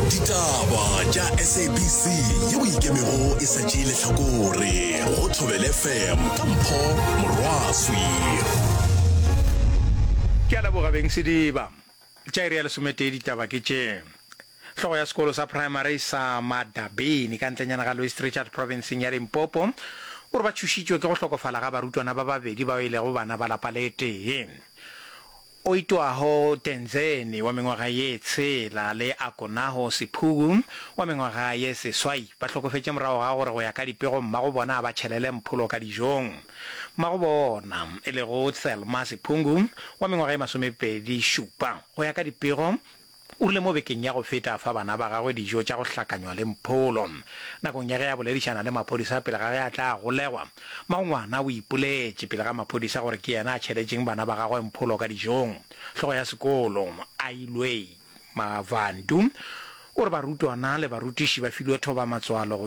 ditaba tša sabc yeo e ikemego e sa tšee lehlakore go thobele fm ka mpho morwaswi ke a leboga beng sediba tša iri ya lesometee ditaba ke tše Hlogo ya sekolo sa primary sa Madabeni ka ntlenyana ga Louis Trichardt provinceng ya Limpopo o re ba tšhošitšwe ke go hlokofala ga barutwana ba babedi bao e lego bana ba lapa le tee. o itwago Tenzeni wa mengwaga ye tshela le Akonaho Siphugu wa mengwaga ye seswai ba hlokofetše morago ga gore go ya ka dipego mmago bona a ba tšhelele mpholo ka dijong. Mmago bona, e lego Thelma Siphungu wa mengwaga ye masomepedi šupa, go ya ka dipego O rile mo bekeng ya go feta a fa bana ba gagwe dijo tša go hlakanywa le mpholo. Nakong ya ge a boledišana le maphodisa pele ga ge a tla golegwa, mmagongwana o ipoletše pele ga maphodisa gore ke yena a tšheletšeng bana ba gagwe mpholo ka dijong. Hlogo ya sekolo, Ailwei Mavandu, o re barutwana le barutiši ba filwe thoba-matswalo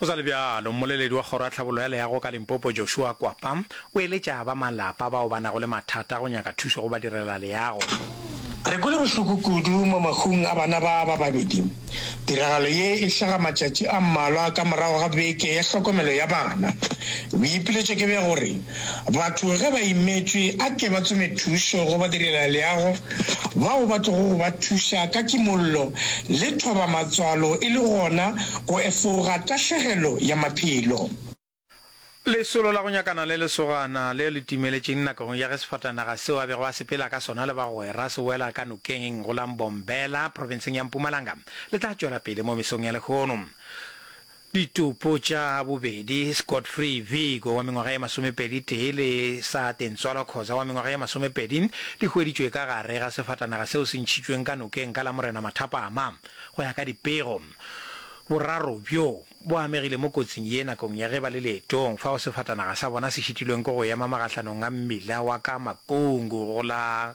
Go sa le bjalo, mmoleledi wa Kgoro ya Tlhabollo ya Leago ka Limpopo, Joshua Kwapa, o eletša ba malapa bao ba nago le mathata go nyaka thušo go badirelaleago. Re kwele bohloko kudu mo mahung a bana ba ba babedi. Tiragalo ye e hlaga matšatši a mmalwa ka morago ga beke ya hlokomelo ya bana. Boipiletšo ke bja gore Batho ge ba imetšwe a ke ba tsome thušo go badirelaleago bao ba tlogo go ba thuša ka kimollo le thobamatswalo e le gona go efoga tahlegelo ya maphelo. Lesolo la go nyakana le lesogana leo le timeletšeng nakong ya ge sefatanaga seo a bego a sepela ka sona le bagwera se wela ka nokeng go la Mbombela, profenseng ya Mpumalanga, le tla tšwela pele mo mesong ya lehono. Ditopo tša bobedi, Scott Free Vigo wa mengwaga ye masomepedi tee le Saate Ntswalwa Khoza wa mengwaga ye masomepedi, di hweditšwe ka gare ga sefatanaga seo se ntšhitšweng ka nokeng ka la Morena Mathapama. Go ya ka dipego, boraro bjo bo amegile mo kotsing ye nakong ya ge ba le leetong fao sefatanaga sa bona se šitilweng ke go ema magahlanong a mmila wa ka Makungu go la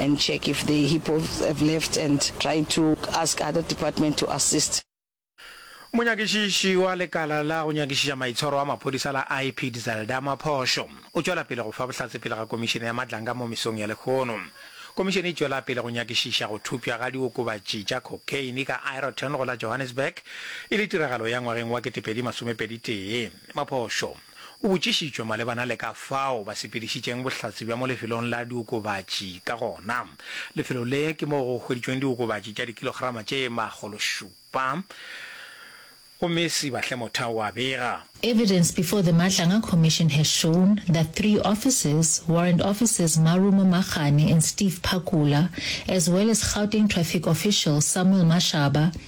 and check if they hippos have left and try to ask other department to assist. Monyakišiši wa lekala la go nyakišiša maitshwaro wa maphodisa la IPID Zelda Maphošo o tšwela pele go fa bohlatse pele ga komišene ya Madlanga mo mesong ya lekgono. Komišene e tšwela pele go nyakišiša go thopšwa ga diokobatši tša cocaine ka Ireton go la Johannesburg e le tiragalo ya ngwageng wa ketepedi masomepedi tee. Maphošo o botšišitšwe malebana le ka fao ba sepedišitšeng bohlatse bja mo lefelong la diokobatši ka gona. Lefelo le ke moo go hweditšweng diokobatši tša dikilograma tše makgološupa, go Messi Bahle-Motha o a bega. Evidence before the Matlanga Commission has shown that three officers, Warrant Officers Marumo Magane and Steve Phakula, as well as Gauteng Traffic Official Samuel Mashaba,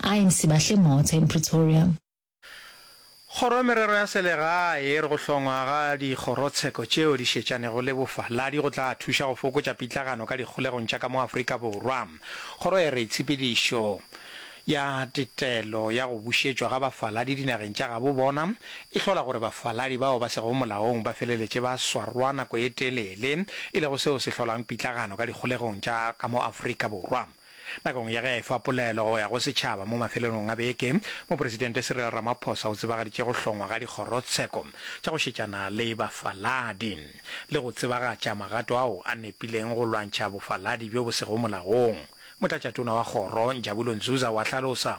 I am Sibahle Mothe in Pretoria. Kgoro ya Merero ya Selegae e re go hlongwa ga dikgorotsheko tšeo di šetšanego le bofaladi go tla thuša go fokotša pitlagano ka dikgolegong tša ka mo Afrika Borwa. Kgoro e re tshepedišo ya tetelo ya go bušetšwa ga bafaladi dinageng tša gabo bona e hlola gore bafaladi bao ba sego molaong ba feleletše ba swarwa nako e telele e lego seo se hlolang pitlagano ka dikgolegong tša ka mo Afrika Borwa. Nakong ya ge a efa polelo go ya go setšhaba mo mafelelong a beke, Mopresidente Cyril Ramaphosa o tsebagaditše go hlongwa ga dikgorotsheko tša go šetšana le bafaladi le go tsebagatša magato ao a nepileng go lwantšha bofaladi bjo bo sego molaong. Motlatšatona wa kgoro, Njabulo Nzuza o a hlalosa.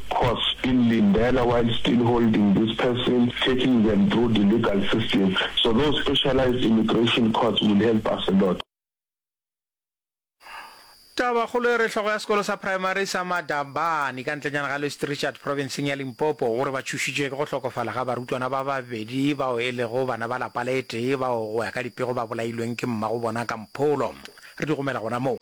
courts in Lindela while still holding this person, taking them through the legal system. So those specialized immigration courts will help us a lot. Tabakgolo e re hlogo ya sekolo sa praemari sa Madabane ka ntlenyana ga Louis Trichardt profenseng ya Limpopo gore ba tšhošitšwe ke go hlokofala ga barutwana ba babedi bao e lego bana ba lapa le tee bao go ya ka dipego ba bolailweng ke mmago bona ka mpholo. Re di romela gona moo.